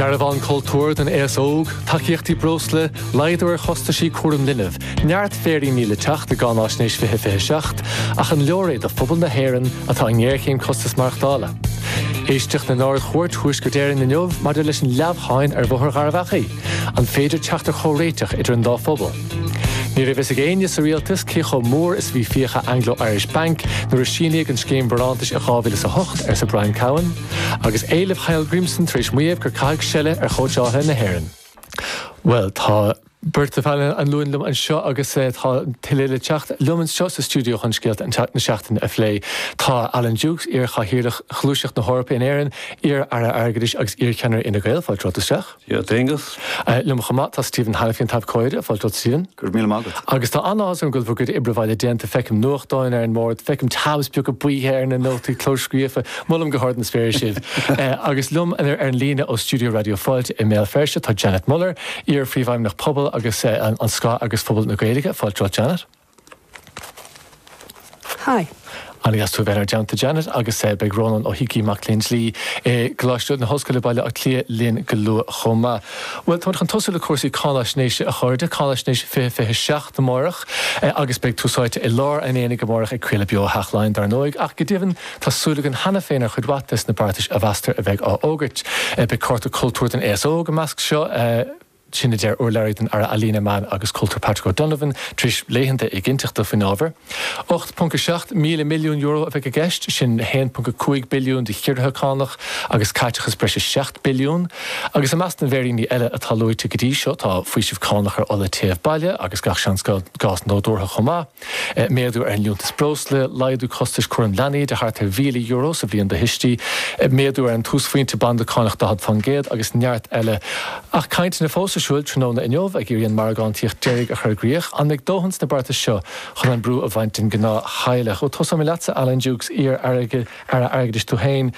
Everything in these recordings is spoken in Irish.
Dearbhán Cultúir don Aos Óg, Tacaíochtaí Breosla, Laghdú ar Chostaisí Cúraim Linbh, Neart Féiríní le Teacht i gCáináisnéis 2027, Ach an Leor É do Phobal na hÉireann atá i nGéarchéim Costas Maireachtála? Éisteacht in Ard-Chúirt Thuaisceart Éireann inniu maidir leis an leamhsháinn ar Bhóthar Gharbh Achaidh, An féidir teacht ar chomhréiteach idir an dá phobal? Ní raibh fhios ag éinne sa Rialtas cé chomh mór is a bhí fiacha Anglo Irish Bank nuair a síníodh an Scéim Barántais i 2008, arsa Brian Cowen. Agus éileamh Hallgrímsson tar éis maíomh gur caitheadh seile ar chóitseálaithe na hÉireann. Bhuel tá beirt de phainéal an Luain liom anseo agus tá tuilleadh le teacht liom anseo sa stiúideo chun scéalta na seachtaine a phlé. Tá Alan Dukes, iar-Chathaoirleach Ghluaiseacht na hEorpa in Éirinn, iar-Aire Airgeadais agus iar-Cheannaire Fhine Gael, fáilte romhat isteach. A Aonghuis. Liom chomh maith, tá Stephen Hanniffy an t-abhcóide, fáilte romhat Stephen. Go raibh míle maith agat. Agus tá an-áthas orm go bhfuil bhur gcuid oibre baile déanta, feicim nuachtáin ar an mbord, feicim tabs beaga buí ar na nótaí clóscríofa, molaim go hard na spéire sibh. Agus liom ar an líne ó stiúideo Raidió Fáilte i mBéal Feirste, tá Janet Muller, iar-Phríomhfheidhmeannach Pobal agus an Scáth-eagras Phobal na Gaeilge, fáilte romhat Janet. Hi. An-deas tú a bheith inár dteannta Janet agus beidh Rónán Ó hÍcí, mac léinn dlí i gColáiste na hOllscoile, Baile Átha Cliath linn go luath chomh maith. Bhuel, táimid chun tosú le cúrsaí cáinaisnéise a chairde, Cáinaisnéis 2027 amárach agus beidh Tús Áite i lár an aonaigh amárach ag craoladh beo ó Theach Laighean dár ndóigh ach go deimhin tá súil eile againn cheana féin ar chuid mhaith des na beartais a mheastar a bheidh á fhógairt. Beidh cárta cultúir don aos óg ina measc seo. Sin a deir urlabhraí don Aire Ealaíne, Meán agus Cultúir Patrick O'Donovan tar éis laethanta éiginnteachta faoin ábhar. 8.7 míle milliún euro a bheidh i gceist, sin 1.5 billiún de chiorruithe cánach agus caiteachas breis is 7 billiún. Agus i measc na bhféiríní eile atá luaite go dtí seo tá faoiseamh cánach ar ola téimh baile agus gach seans gás nádúrtha chomh maith. Méadú ar an liúntas breosla, laghdú costais cúraim leanaí de thart ar €1,000 sa bhliain do thuistí, méadú ar an túsphointe banda cánach 40% agus neart eile. Ach tá cainteanna fós ar siúil tráthnóna inniu ag iarraidh an margántaíocht deiridh a chur i gcrích. An mbeidh dóthain sna beartais seo chun an brú a bhaint den gnáth theaghlach? Ó tosóidh mé leatsa Alan Dukes, iar Aire Airgeadais tú féin,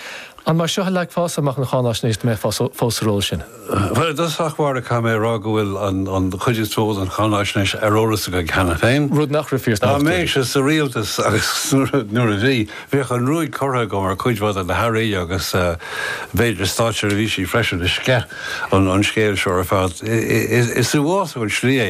an mar seo a leagfása amach an cháináisnéis dá mbeifeá fós sa ról sin? Bhuel, i dtosach báire caithfidh mé a rá go bhfuil an chuid is mó den cháinaisnéis ar eolas againn cheana féin. Rud nach raibh fíor sna hochtóidí. Dá mbeinnse sa rialtas agus nuair a bhí, bheadh an ruaig curtha agam ar cuid mhaith de na hAirí agus b'fhéidir státseirbhísí freisin. As sceith an scéil seo ar fad. Is uafásach an slí é.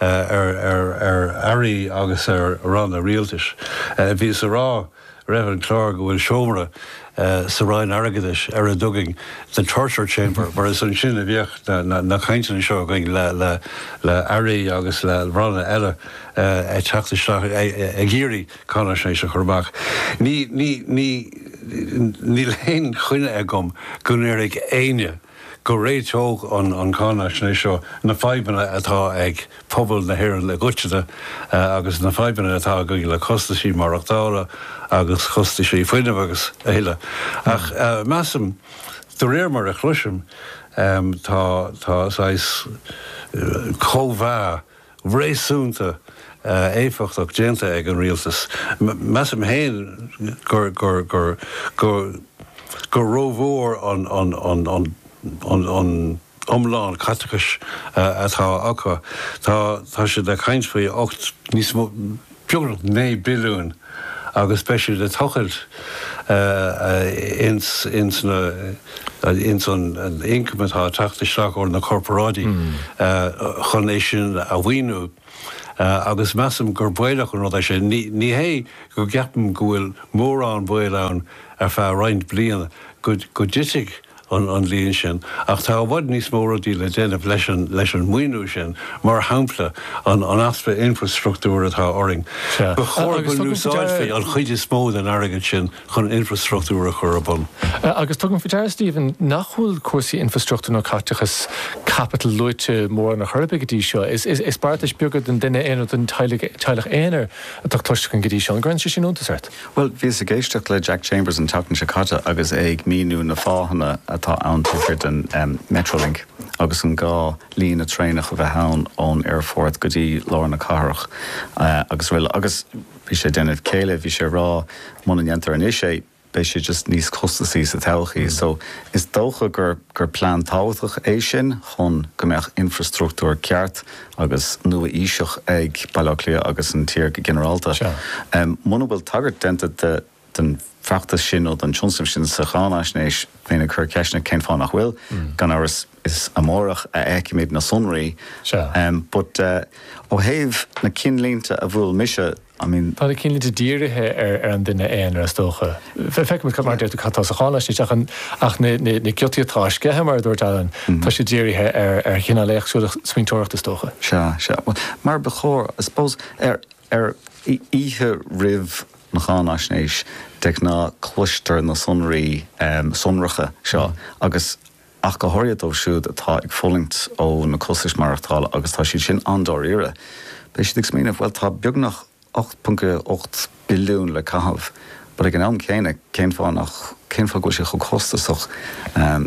ar Airí agus ar ranna rialtais. Bhíos a rá roimh an clár go bhfuil seomra sa Roinn Airgeadais ar a dtugaimis The Torture Chamber mar is ansin a bhíodh na cainteanna seo againn le Airí agus le ranna eile ag teacht isteach ag iarraidh cáinaisnéis a chur amach. Níl aon choinne agam go n-éireodh. go réiteodh an cháinaisnéis seo na fadhbanna atá ag pobal na hÉireann i gcoitinne agus na fadhbanna atá againn le costaisí maireachtála agus costaisí fuinnimh agus a thuilleadh. Ach measaim, de réir mar a chloisim, tá saghas cóimheá réasúnta éifeachtach déanta ag an Rialtas. Measaim féin gur rómhór an t-iomlán caiteachais atá acu. Tá siad ag caint faoi ocht, níos mó. beagnach €9 billiún agus beifear ag tochailt ins an ioncam atá ag teacht isteach ó na corparáidí chun é sin a mhaoiniú agus measaim gur baolach an rud é sin. Ní hé go gceapaim go bhfuil mórán baol ann ar feadh roinnt bliana go dtitfidh an líon sin ach tá i bhfad níos mó rudaí le déanamh leis an maoiniú sin, mar shampla an easpa infreastruchtúir atá orainn. Ba chóir go n-úsáidfí an chuid is mó den airgead sin chun infreastruchtúr a chur ar bun. Agus tugaim faoi deara, Stephen, nach bhfuil cúrsaí infreastruchtúir nó caiteachas caipitil luaite mórán ar chor ar bith go dtí seo. Is beartais bheaga don duine aonair, don teaghlach aonair atá cloiste againn go dtí seo. An gcuireann sé sin iontas ort? Bhuel, bhíos ag éisteacht le Jack Chambers an tseachtain seo caite agus é ag míniú na fáthanna atá ann taobh thiar den Metrolink agus an gá líne traenach a bheith ann ón aerfort go dtí lár na cathrach agus rl. Agus bhí sé ag déanamh céille, bhí sé ag rá muna ndéantar anois é beidh sé just níos costasaí sa todhchaí. So is dócha gur plean tábhachtach é sin chun go mbeadh infreastruchtúr ceart, agus nua-aoiseach ag Baile Átha Cliath agus an tír go ginearálta. Muna bhfuil tagairt déanta den bhfeachtas sin nó den tionscnamh sin sa cháinaisnéis, bheinn ag cur ceisteanna cén fáth nach bhfuil. Gan amhras is amárach a fheicfimid na sonraí, but ó thaobh na cinnlínte a bhuail mise, I mean. Tá na cinnlínte dírithe ar an duine aonair is dócha. Feicfimid, mar a deir tú, cad atá sa cháinaisnéis ach na giotaí atá á sceitheadh, mar a dúirt Alan, tá siad dírithe ar chineál éagsúil smaointeoireachta is dócha. Sea, sea. Bhuel, mar ba chóir, I suppose. Ar oíche roimh an cháinaisnéis de ghnáth cloistear na sonraí sonracha seo agus ach go háirithe dóibh siúd atá ag fulaingt ó na costais maireachtála agus tá siad sin an-dáiríre. Beidh siad ag smaoineamh, 'Bhuel, tá beagnach €8.8 billiún le caitheamh, ach ag an am céanna, cén fáth nach, cén fáth go bhfuil sé chomh costasach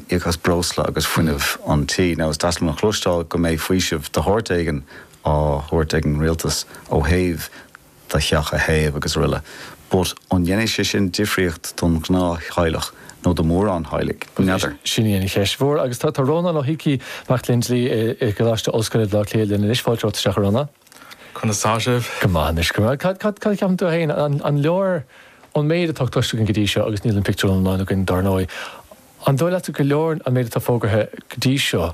íoc as breosla agus fuinneamh an tí? Now is deas liom a chloisteáil go mbeidh faoiseamh de shórt éigin á thabhairt ag an rialtas ó thaobh, do theach a théamh agus aroile but an ndéanfaidh sé sin difríocht don ghnáth-theaghlach nó do mhórán theaghlaigh? N'fheadar. Sin í an cheist mhór agus tá Rónán Ó hÍcí, mac léinn dlí i gColáiste Ollscoile Bhaile Átha Cliath linn anois. Fáilte romhat isteach a Rónán. Conas tá sibh? Go maith anois. Go maith. Cad a cheapann tú féin? An leor an méid atá cloiste againn go dtí seo agus níl an pictiúr iomlán againn dar ndóigh. An dóigh leatsa gur leor an méid atá fógartha go dtí seo?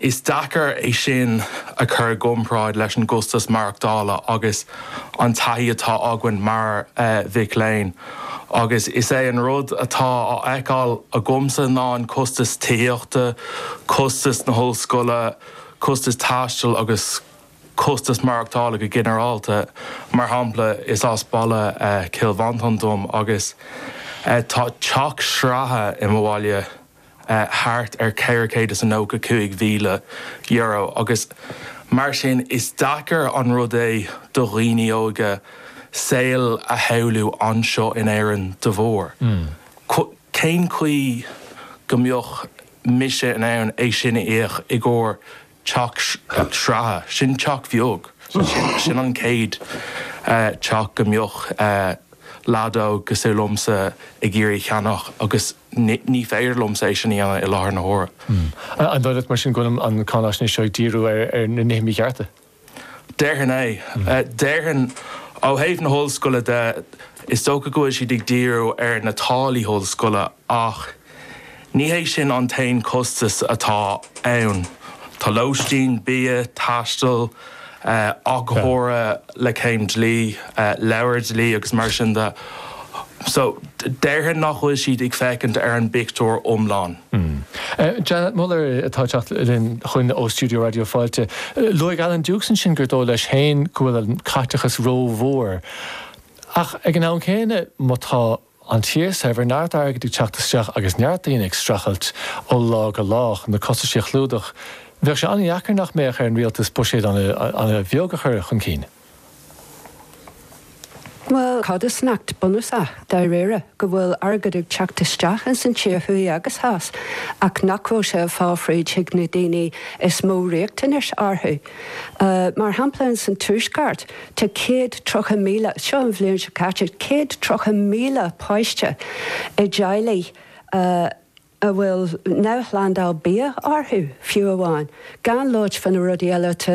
Is deacair é sin a chur i gcomparáid leis an gcostas maireachtála agus an taithí atá againn mar mhic léinn agus is é an rud atá á fheiceáil agamsa ná an costas tithíochta, costas na hollscoile, costas taistil agus costas maireachtála go ginearálta. Mar shampla, is as baile Chill Mhantáin dom agus tá teach sraithe i mo bhaile. thart ar €495,000 agus mar sin is deacair an rud é do dhaoine óga saol a shamhlú anseo in Éirinn de bharr. Cén chaoi go mbeadh mise in ann é sin a íoc i gcomhair Teach sraithe, sin teach bheag. Sin an chéad teach go mbeadh leaid óg cosúil liomsa ag iarraidh a cheannach agus ní féidir liomsa é sin a dhéanamh i láthair na huaire. An dóigh leat mar sin go bhfuil an cháinaisnéis seo ag díriú ar na nithe míchearta? Déarfainn é. Déarfainn ó thaobh na hollscoile de, is dócha go bhfuil siad ag díriú ar na táillí ollscoile Ach ní hé sin an t-aon chostas atá ann. Tá lóistín, bia, taisteal, go háirithe le céim dlí, leabhair dlí agus mar sin de. So, déarfainn nach bhfuil siad ag féachaint ar an bpictiúr iomlán. Janet Muller atá ag teacht linn chugainn ó stiúideo Raidió Fáilte. Luaigh Alan Dukes ansin gur dóigh leis féin go bhfuil an caiteachas rómhór. Ach ag an am céanna, má tá An tír saibhir, neart airgid ag teacht isteach agus neart daoine ag streachailt ó lá go lá chun na costaisí a chlúdach, bheadh sé an-dheacair nach mbeadh ar an rialtas buiséad an-bheag a chur chun cinn. Bhuel, cé acu is rud nach bunúsach, dáiríre? Go bhfuil airgead ag teacht isteach ins an tír thuaidh agus theas ach nach bhfuil sé ag fáil fríd chuig na daoine is mó riachtanais orthu. Mar shampla ins an tuaisceart, Tá céad tríocha míle, seo an bhliain seo caite, céad tríocha míle páiste i dteaghlaigh a bhfuil neamhshlándáil bia orthu, fiú amháin, gan labhairt fá na rudaí eile atá